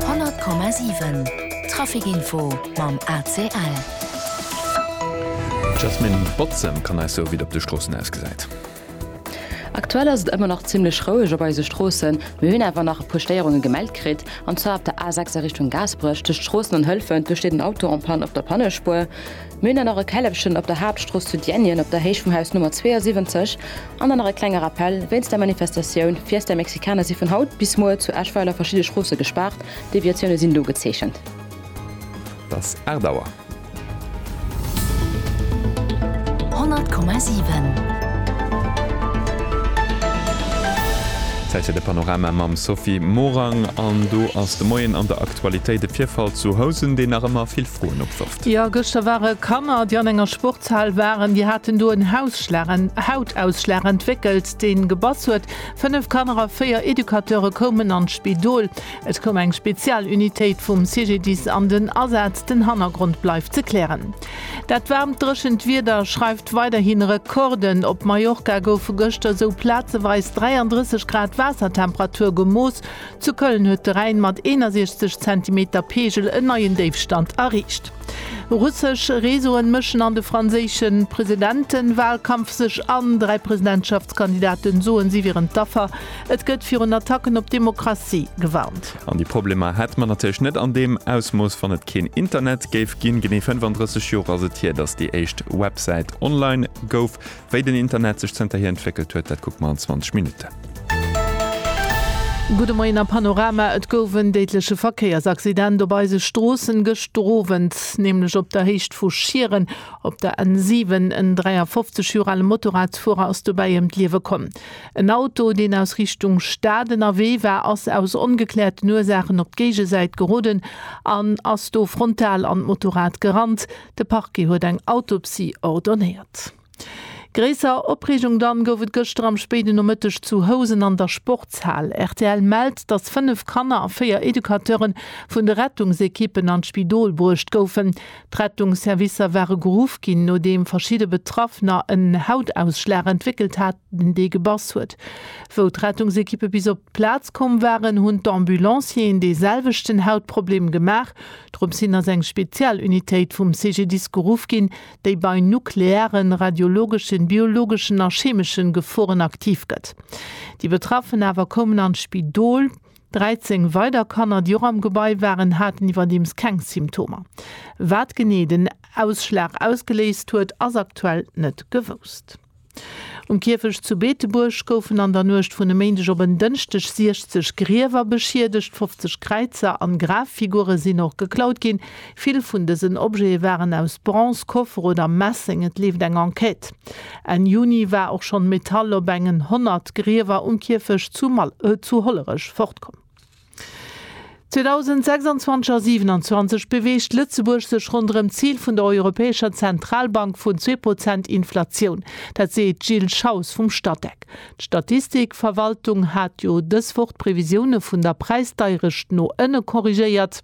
100,7 Traficinfo mam ACL. D'Jasmine Botzem kann eis soe wéi et op de Stroossen ausgesäit. Aktuell ass et ëmmer nach zimmlech roueg op eise Stroossen. Mir hunn awer nach e puer Stéierunge gemellt kritt. An zwar op der A6 a Richtung Gaasperech, tëscht Stroossen an Hëlfent, do steet en Auto en panne op der Pannespuer. Mir hunn dann nach e Källefchen op der Haaptstrooss zu Diänjen op der Héicht vum Haus Nummer 72 an dann nach e klenge Rappell wéinst der Manifestatioun Fiesta Mexicana si vun haut bis muer zu Eschweiler verschidde Stroosse gespaart, Deviatioune sinn do gezeechent. Et ass 8 Auer. 100,7. Zäit fir de Panorama mam Sophie Morang an do ass de Moien an der Aktualitéit e Virfall zu Housen, deen nach ëmmer vill Froen opwërft. Jo, gëschter ware Kanner, déi an enger Sportshal waren, déi haten do en Hausschlag, en Hautausschlag entwéckelt, deen gebass huet. Fënnef Kanner a véier Educateure koumen an d'Spidol. Et koum eng Spezialunitéit vum CGDIS an den Asaz. Den Hannergrond bleift ze klären. Dat waarmt, dréchent Wieder schreift weiderhi Rekorden. Op Mallorca goufe gëschter esou plazeweis 33 Grad Waassertemperatur gemooss. Zu Köln huet de Rhäin mat 61 Zentimeter Peegel en neien Déifstand erreecht. Russesch Reseauen mëschen an de franséische Presidenten-Walkampf sech an, dräi Presidentschaftskandidaten soen, si wieren d'Affer, et gëtt virun Attacken op d'Demokratie gewarnt. An déi Problemer hätt mer natierlech net an deem Ausmooss, wann et keen Internet géif ginn. Genee 35 Joer ass et hier, datt déi éischt Websäit online gouf. Wéi den Internet sech zënterhier entwéckelt huet, dat kucke mer an 20 Minutten. Gudde Moien a Panorama, Et gouf en déidleche Verkéiersaccident op eise Stroossen gëschter Owend, nämlech op der Héicht vu Schieren op der N7. En 53 Joer ale Motorradsfuerer ass dobäi ëm d'Liewe komm. En Auto, deen aus Richtung Stad ënnerwee war, ass aus ongekläerten Ursaachen op d'Géigesäit geroden an ass do frontal an d'Motorrad gerannt. De Parquet huet eng Autopsie ordonéiert. Gréisser Opreegung dann gouf et gëschter am spéiden Nomëtteg zu Housen an der Sportshal. Rtl mellt, datt 5 Kanner a 4 Educateure vun de Rettungsekippen an d'Spidol bruecht goufen. D'Rettungsservicer ware geruff ginn, nodeem verschidde Betraffener en Hautausschlag entwéckelt haten, dee gebass huet. Wou d'Rettungsekippe bis op d'Plaz komm waren, hunn d'Ambulancieren dee selwechten Hautproblem gemaach. Drop sin ass eng Spezialunitéit vum CGDIS geruff gin, déi bei nuklearen, radiologeschen, biologeschen a chemeschen Geforen aktiv gët. Déi Betraffen awer koumen an d'Spidol. 13 weider Kanner, déi och am Gebai waren, haten iwwerdeems keng Symptomer. Wat genee den Ausschlag ausgeléist huet, ass aktuell nët gewousst. Um Kierfecht zu Beetebuerg goufen an der Nuecht vun e Méindeg op en Dënschdeg 60 Griewer beschiedegt. 50 Kräizer an Graffigure sinn och geklaut ginn. Vill vun dësen Objete waren aus Bronze, Koffer oder Messeng. Et leeft eng Enquête. Enn Juni war och schonn Metall op engen 100 Griewer um Kierfecht zu Hollerech fortkomm. 2026 a 27 beweegt Lëtzebuerg sech ronderëm d'Zil vun der Europäescher Zentralbank vun zwee Prozent Inflatioun. Dat seet d'Jill Schaus vum Statec. D'Statistikverwaltung hat jo dës Woch d'Previsioune vun der Präisdeierecht no ënne korrigéiert.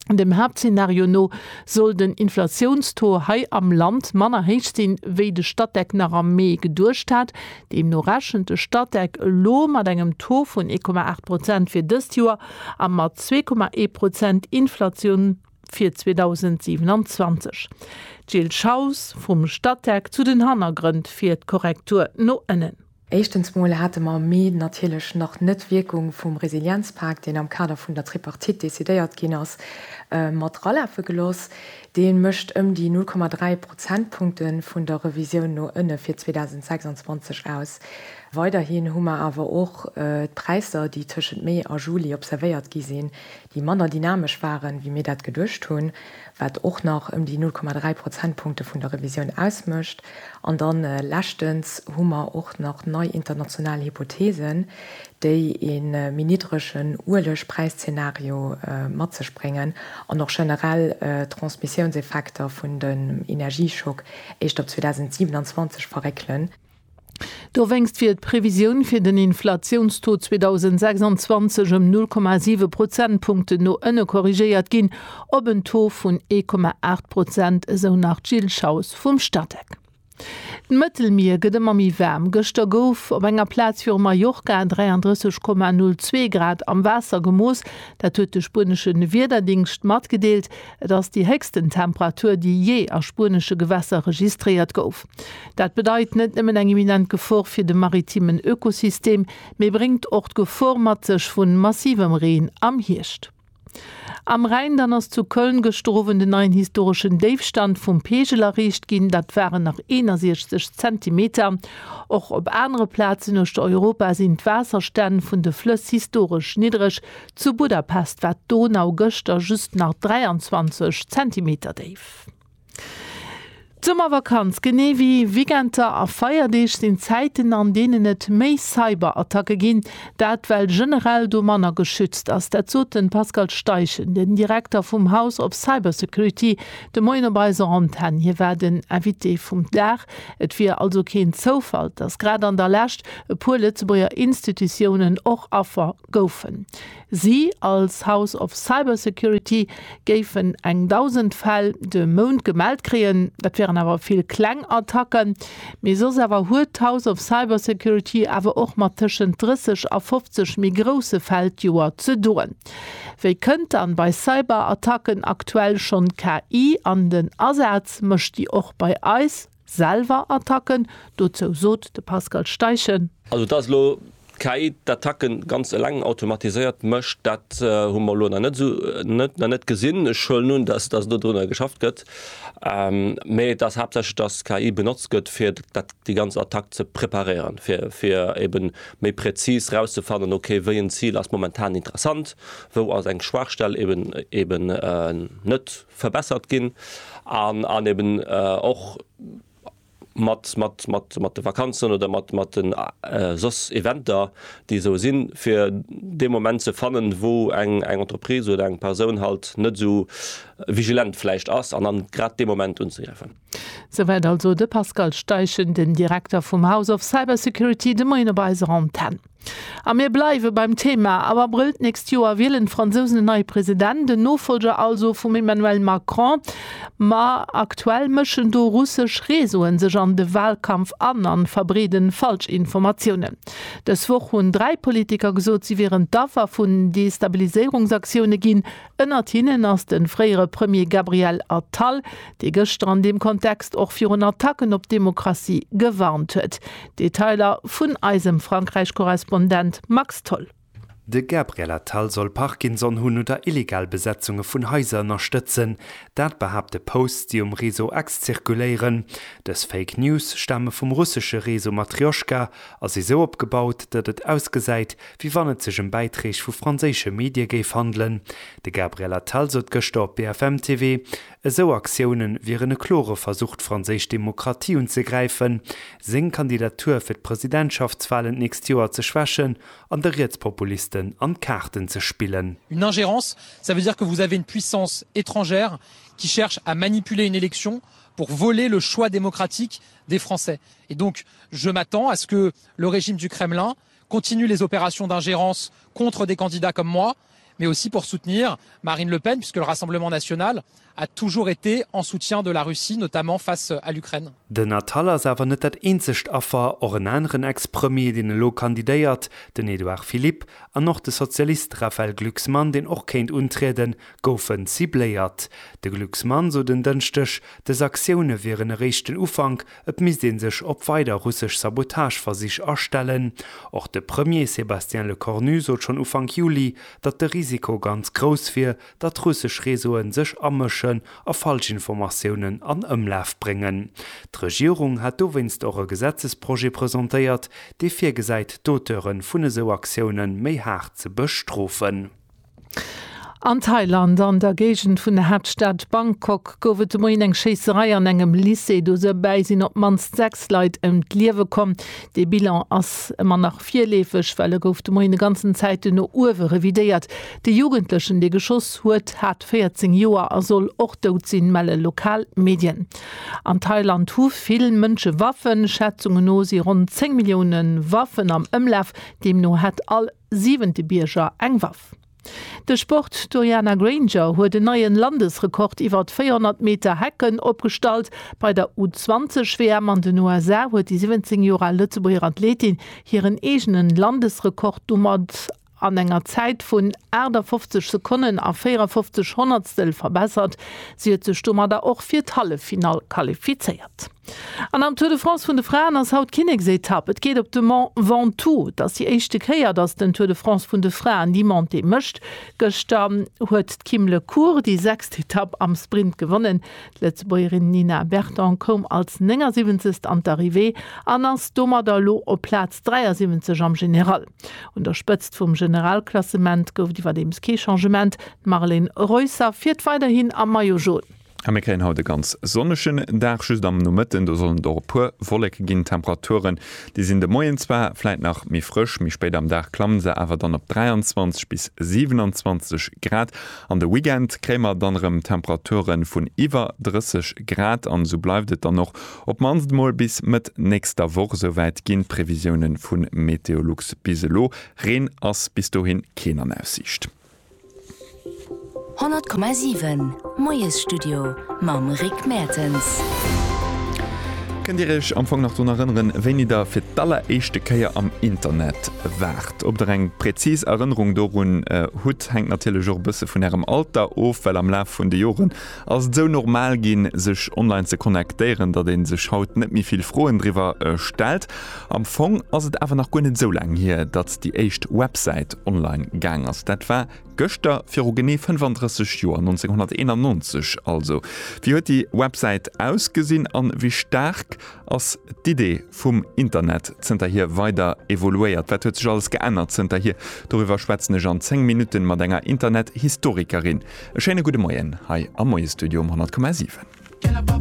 Dem Haaptzenario no soll den Inflatiounstaux hei am Land manner héich sinn, wéi de Statec nach am Mee geduecht hat. Deemno rechent de Statec elo mat engem Taux vun 1,8 Prozent fir dëst Joer a mat 2,1 Prozent Inflatioun fir 2027. D'Jill Schaus vum Statec zu den Hannergrënn fir d'Korrektur no ënnen. Éischtens mol hate mer am Mee natierlech nach net d'Wierkung vum Resilienzpak, deen am Kader vun der Tripartite decidéiert ginn ass, mat ralafe gelooss. Dee mécht ëm déi 0,3 Prozentpunkte vun der Revisioun no ënne fir 2026 aus. Weiderhi hu mer awer och d'Präisser, déi tëschent Mee a Juli observéiert gi sinn, déi manner dynamesch waren, wéi mir dat geduecht hunn. wat och nach ëm déi 0,3 Prozentpunkte vun der Revisioun ausmécht. An da leschtens hu mer och nach nei international Hypotheesen, déi e méi niddregen Uelegpräiszeenario mat sech bréngen an och generell d'Transmissiounseffekter vun dem Energieschock éischt op 2027 verréckelen. Dowéinst wier d'Previsioun fir den Inflatiounstaux 2026 ëm 0,7 Prozentpunkten no ënne korrigéiert ginn, op en Taux vun 1,8 Prozent, esou nach d'Jill Schaus vum Statec. D'Mëttelmier gëtt ëmmer méi waarm. Gëschter gouf op enger Plaz viru Mallorca 33,02 Grad am Waasser gemooss. Dat huet de spuenesche Wiederdingscht matgedeelt. Et ass déi héchsten Temperatur, déi jee a spuenesche Gewässer registréiert gouf. Dat bedeit net nëmmen eng imminent Gefor fir de maritimen Ökosystem, mee bréngt och d'Gefor mat sech vun massivem Reen am Hierscht. Am Rhäin dann ass zu Köln gëschter Owend en neien historeschen Déifstand vum Peegel erreecht ginn. Dat waren nach 61 Zentimeter. Och op anere Plazen uechter Europa sinn d'Waasserstänn vun de Flëss historesch niddreg. Zu Budapest war d'Donau gëschter just nach 23 Zentimeter déif. D'Summervakanz, genee wéi Weekenter a Feierdeeg, sinn Zäiten, an deenen et méi Cyberattacke ginn. Dat well generell do manner geschützt ass. Dat sot de Pascal Steichen, den Direkter vum House of Cybersecurity, de Moien op eiser Antenn. Hie war den Invité vum Dag. Et wier also keen Zoufall, datt grad an der Lescht e puer Lëtzebuerger Institutiounen och Affer goufen. Si als House of Cybersecurity géifen eng 1.000 Fäll de Mount gemellt kréien. Dat wieren awer vill kleng Attacken. Mee soss awer huet d'House of Cybersecurity awer och mat tëschent 30 a 50 méi grousse Fäll d'Joer ze doen. Wéi kënnt dann bei Cyberattacken aktuell schonn d'KI an den Asaz? Mécht déi och bei eis? Selwer Attacken, dozou sot de Pascal Steichen. Also dass elo d'KI d'Attacke ganz eleng automatiséiert mécht, dat hu mer elo nach net gesinn. Ech huelen un, dass do drunner geschafft gëtt, mee et ass haaptsächlech, dass d'KI benotzt gëtt, fir déi ganz Attack ze preparéieren, fir ebe méi präzis erauszefannen, okay, wéi en Zil ass momentan interessant, wou ass eng Schwaachstell ebe net. verbessert ginn an eben och mat de Vakanzen oder mat den soss Eventer, déi esou sinn, fir dee Moment ze fannen, wou eng Entreprise oder eng Persoun halt net esou vigilent vläicht ass an dann grad dee Moment unzegräifen. Souwäit also de Pascal Steichen, den Direkter vum House of Cybersecurity, de Moien op eiser Antenn. A mir bleiwe beim Thema. Am Abrëll d'nächst Joer wielen d'Fransousen en neie President, en Nofollger also vum Emmanuel Macron. Ma aktuell mëschen do russesch Reseaue sech an de Walkampf an a verbreede Falschinformatiounen. Dës Woch hunn dräi Politiker gesot, si wieren d'Affer vun Destabiliséierungsaktioune ginn. Ënnert hinnen ass de fréiere Premier Gabriel Attal, dee gëschter an deem Kontext och virun Attacken op d'Demokratie gewarnt huet. Detailer vun eisem Frankräich-Korrespondent Max Tholl. De Gabriel Attal soll Parkinson hunn oder illegal Besetzunge vun Haiser ënnerstëtzen. Dat behaapte Posts, déi um Réseau X zirkuléieren. Dës Fake News stame vum russesche Réseau Matrjoschka a si sou opgebaut, datt et ausgesäit, wéi wann et sech ëm Bäiträg vu franséische Medie géif handelen. De Gabriel Attal sot gëschter op BFM TV, esou Aktioune wieren e klore Versuch d'franséisch Demokratie unzegräifen, seng Kandidatur fir d'Presidentschaftswalen d'nächst Joer ze schwächen an de Rietspopulisten an d'Kaarten ze spillen. Une ingérence, ça veut dire que vous avez une puissance étrangère qui cherche à manipuler une élection pour voler le choix démocratique des Français. Et donc, je m'attends à ce que le régime du Kremlin continuent les opérations d'ingérence contre des candidats comme moi, mais aussi pour soutenir Marine Le Pen, puisque le Rassemblement national a toujours été en soutien de la Russie, notamment face à l'Ukraine. Den Attal ass awer net dat eenzegt Affer. Och en aneren Ex-Premier, deen elo kandidéiert, den Edouard Philippe, an och de Sozialist Raphaël Glucksmann, deen och kéint untrieden, goufen cibléiert. De Glucksmann sot en Dënschdeg, dës Aktioune wieren eréischt den Ufank, Et misst ee sech op weider russesch Sabotageversich astellen. Och de Premier Sébastien Lecornu sot schonn Ufank Juli, datt de Risiko ganz grouss wier, datt russesch Réseaue sech amëschen a Falschinformatiounen an Ëmlaf bréngen. D'Regierung hat dowéinst och e Gesetzesprojet presentéiert, dee virgesäit, d'Auteure vun esou Aktioune méi haart ze bestrofen. An Thailand, an der Géigend vun der Haaptstad Bangkok, gouf et de Moien eng Schéisserei an engem Lycée. Dobäi sinn op d'mannst sechs Leit ëm d'Liewe komm. De Bilan ass ëmmer nach virleefeg, well e gouf de Moien e ganzen Zäiten no uewe revidéiert. De Jugendlechen, dee geschoss huet, hat 14 Joer a soll och dout sinn, melle lokal Medien. An Thailand hu vill Mënsche Waffen. Schätzunge no si ronn 10 Millioune Waffen am Ëmlaf. Deemno hätt all. siwente Bierger eng Waff. De Sport, D'Uriana Grainger huet en neien Landesrekord iwwert 400 Meter Hecken opgestallt bei der U20 WM an den USA huet déi 17 Joer al Lëtzebuerger Athletin hiren eegenen Landesrekord domat an enger Zäit vun 58 Sekonnen a 54 Honnertstel verbessert. Si huet sech domadder och fir d'Halleffinall qualifizéiert. An am Tour de France vun de Fraen ass haut d'Kinneksetapp. Et geet op de Mont Ventoux. Et ass déi éischte Kéier, datt den Tour de France vun de Fraen déi Montée mécht. Gëschter huet d'Kim Le Cours déi sechst Etapp am Sprint gewonnen. D'Lëtzebuergerin Nina Berton koum als 79. an d'Arrivée an ass domadder elo op Plaz 73 am General. Un der Spëtzt vum Generalklassement gouf et iwwerdeems kee Changement, d'Marlen Reusser fiert weiderhin am Maillot Jaune. A mir kréien haut e ganz sonnegen Dag, just am Nomëtten, do sollen et och e puer Wolleke ginn. D'Temperaturen, déi sinn de Moien zwar vläit nach méi frësch, méi spéit am Dag klamme se awer dann op 23 bis 27 Grad. An de Weekend kréie mer dann erëm Temperature vun iwwer 30 Grad an esou bleift et dann och op d'mannst emol bis Mëtt nächster Woch. Esouwäit ginn d'Previsiounen vu Meteolux bis elo. Reen ass bis dohin keen an Aussiicht. 100,7 Moiesstudio mam Rick Mertens. Kënnt Dir Iech am Fong nach drun erënneren, wéini Der fir d'alleréischte Kéier am Internet waart? Ob Der eng präzis Erënnerung dorun hutt, hänkt natierlech och e bësse vun Ärem Alter of, well am Laf vun de Joren ass et esou normal ginn, sech online ze connectéieren, datt ee sech haut net méi vill Froen driwwer stellt. Am Fong ass et awer nach guer net esou laang hier, datt déi éischt Websäit online gaang ass. Dat war gëschter, viru genee 35 Joer, 1991 also. Wéi huet déi Websäit ausgesinn an wéi staark ass d'Idee vum Internet zënterhier weider evoluéiert? Wat huet sech alles geännert zënterhier? Doriwwer schwätzen ech an 10 Minutten mat enger Internet-Historikerin. E schéine gudde Moien hei am Moie-Studio um 100,7.